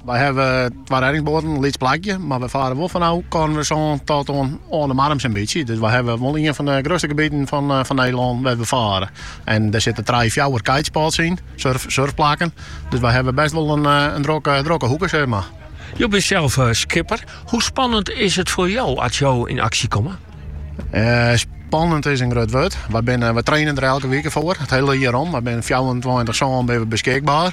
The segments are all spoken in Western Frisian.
Wy hawwe twa reddingsboaten, lyts plakje, mar wy fare wol fan ôf Koarnwertersân oant oan oan De Marne sa'n bytsje. Dus wy hawwe wol ien fan de grutste gebieten fan fan Nederlân wêr't wy fare. En dêr sitte trije, fjouwer kitespots yn, surf surfplakken. Dus wy hawwe bêst wol in in drokke drokke hoeke sê mar. Jo binne sels skipper. Hoe spannend is it foar jo as jo yn aksje komme? Spannend is in grut wurd. Wy binne, wy trainen der elke wike foar, it hiele jier om. Wy binne fjouwerentweintich sân binne wy beskikber.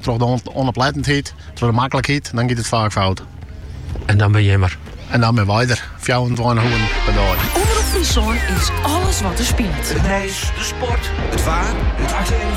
Troch de ûnoplettenheid, troch de maklikheid, dan giet it faak fout. En dan binne jimme der. En dan binne wy der, fjouwerentweintich oeren per dei. Omrop Fryslân is alles wat der spilet. It nijs, de sport, it waar, it aktuele